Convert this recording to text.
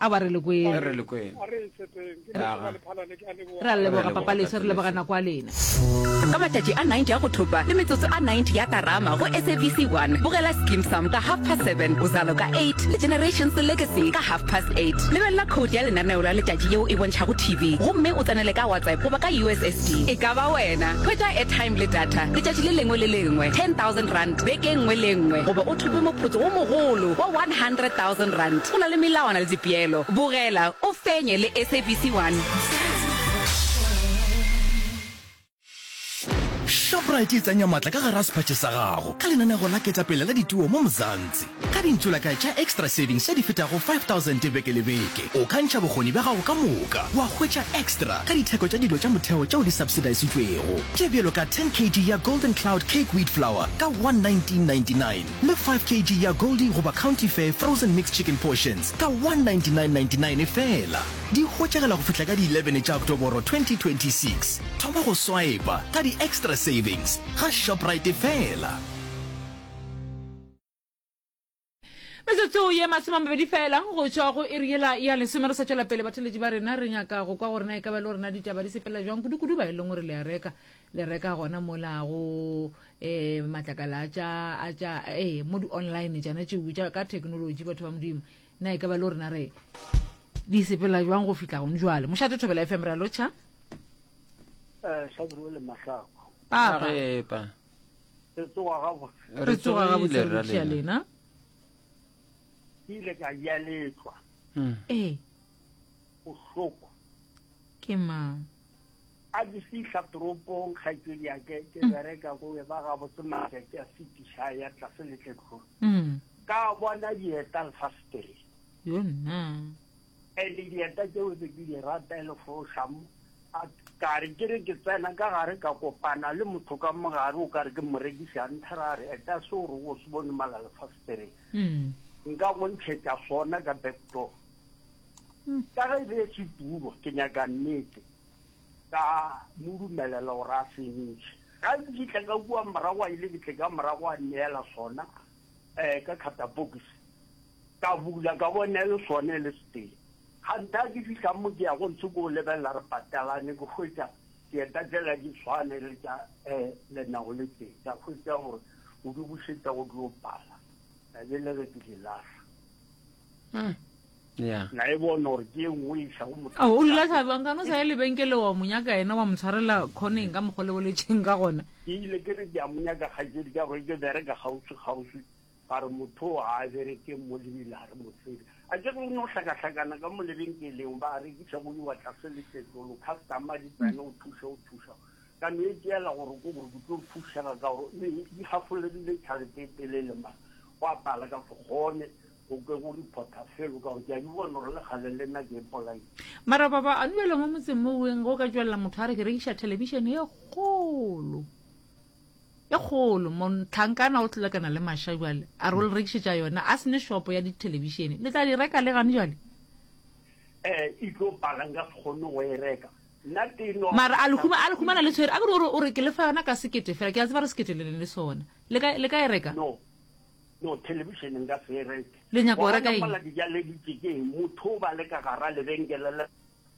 A ba re le kwele. A re le kwele. A re tshepeng. Ke Leboga Lephalane ke a leboga. Re a leboga Papa Leswe, re leboga nako ya lena. Ka matšatši a 90 a go thopa le metsotso a 90 ya Karama go SABC 1, bogela Skeem Saam ka half past 7, Uzalo ka 8 le Generations Legacy ka half past 8. Lebelela khoutu ya lenaneo la letšatši yeo e bontšhago TV gomme o tsenele ka WhatsApp goba ka USSD. E ka ba wena, hwetša airtime le data letšatši le lengwe le lengwe, R10,000. Beke e nngwe le e nngwe goba o thope moputso wo mogolo wa R100,000. Go na le melawana le dipeelo. Bogela o fenye le SABC 1. Shoprite e tsenya matla ka gare ga sephatše sa gago ka lenanego la Ketapele la Dituo mo Mzansi. Ka dintsulaka tša Extra Savings tše di fetago 5000 beke le beke, o ka ntšha bokgoni bja gago ka moka wa hwetša extra ka ditheko tša dilo tša motheo tšeo di subsidisitšwego, tše bjalo ka 10 kg ya Golden Cloud Cake Wheat Flour ka 119.99 le 5 kg ya Goldie goba County Fare Frozen Mixed Chicken Portions ka 199.99 feela. Di hwetšagala go fihla ka di 11 tša Oktoboro 2026. Thoma go swaepa ka di-Extra Savings ga Shoprite feela. metsotso ye masome mabedi fela go tšwa go eriela ya lesome re sa tšwela pele batheletši ba rena re nyaka go kwa go rena e ka ba le go rena ditaba di sepelela jwang kudukudu ba e leng gore le a reka le reka gona mola go um eh, matlakala a tša a tša ee eh, mo di-online tšana tšeo tša ka thekenoloji batho ba modimo na e ka ba le go rena re di sepelela jwang go fitlha gone jwale mošate thobela fm ra lotšha eh, papa re tsoga gabotse re tsoga gabotse re tšea lena ke ile ka ya letlwa hmm. ee bohloko ke mang a ke fihla toropong kgaitsedi yake ke hmm. bereka go e ba gabotse matšatši a fetiša ya tlase letletlong hmm. ka bona dieta lefastere yonna Edi dieta tšeo tse ke di rata e le fošamo, a ka re ke re ke tsena ka gare ka kopana le motho ka mogare o ka re ke morekiši a nthera a re eta se o rego o se bone mala lefasitereng mm. nka go ntšhetša sona ka backdoor mm. ka ge e be se tulo ke nyaka nnete ka mo dumelela gore a finiše ga ke fitlha ka kua morago a ile ke tle ka morago a neela sona um ka catapokisi Ka bula ka bona e le sona e le setee. Kganthe ga ke fihla mo ke ya go ntse ke o lebelela re patalane ke hwetša dieta tšela di tshwane le tša lena o le tee. Ka hwetša gore o di bušetša go tlo pala ka be le re ke di lahla. Na e bona gore ke e nngwe e isa go motho. Ao o dula Thabi wa nkana o sa ye lebenkele wa mo nyaka yena wa mo tshwarela khoneng ka mokgwa o le boletšeng ka gona. Ke ile ke re ke ya mo nyaka kgaetšedi ka gore ke bereka kgauswi kgauswi Ba re motho o ga a bereke mo lebile a re motswedi a ke re o ne o hlakahlakana ka mo lebenkeleng ba rekiša go iwa tlase le tletlolo customer di tsena o thuša o thuša ka no e tšeela gore ko gore ke tlo o thušega ka gore ne di hafolegile tšhalete e telele mara go a pala ka se kgone go ke go reporta felo ka gore ke a di bona gore le gale le nna ke ipolaile Mara baba a duela mo motseng mo weng go ka tšwelela motho a re ke rekiša television e kgolo. e kgolo mo tlhankana o tlolekana le masha jwale a re o le rekišetša yona a sene shopo ya dithelebišene le tla di reka le gane jwale eh e tlo pala nka se kgone go e reka nna teno mara a lehuma a lehumana le tshwere a ke gore o re ke lefa yona ka sekete fela ke a tseba re sekete le leng le sona le ka le ka e reka no no television nka se e reke le nyaka go reka eng motho o ba le ka gara lebenkele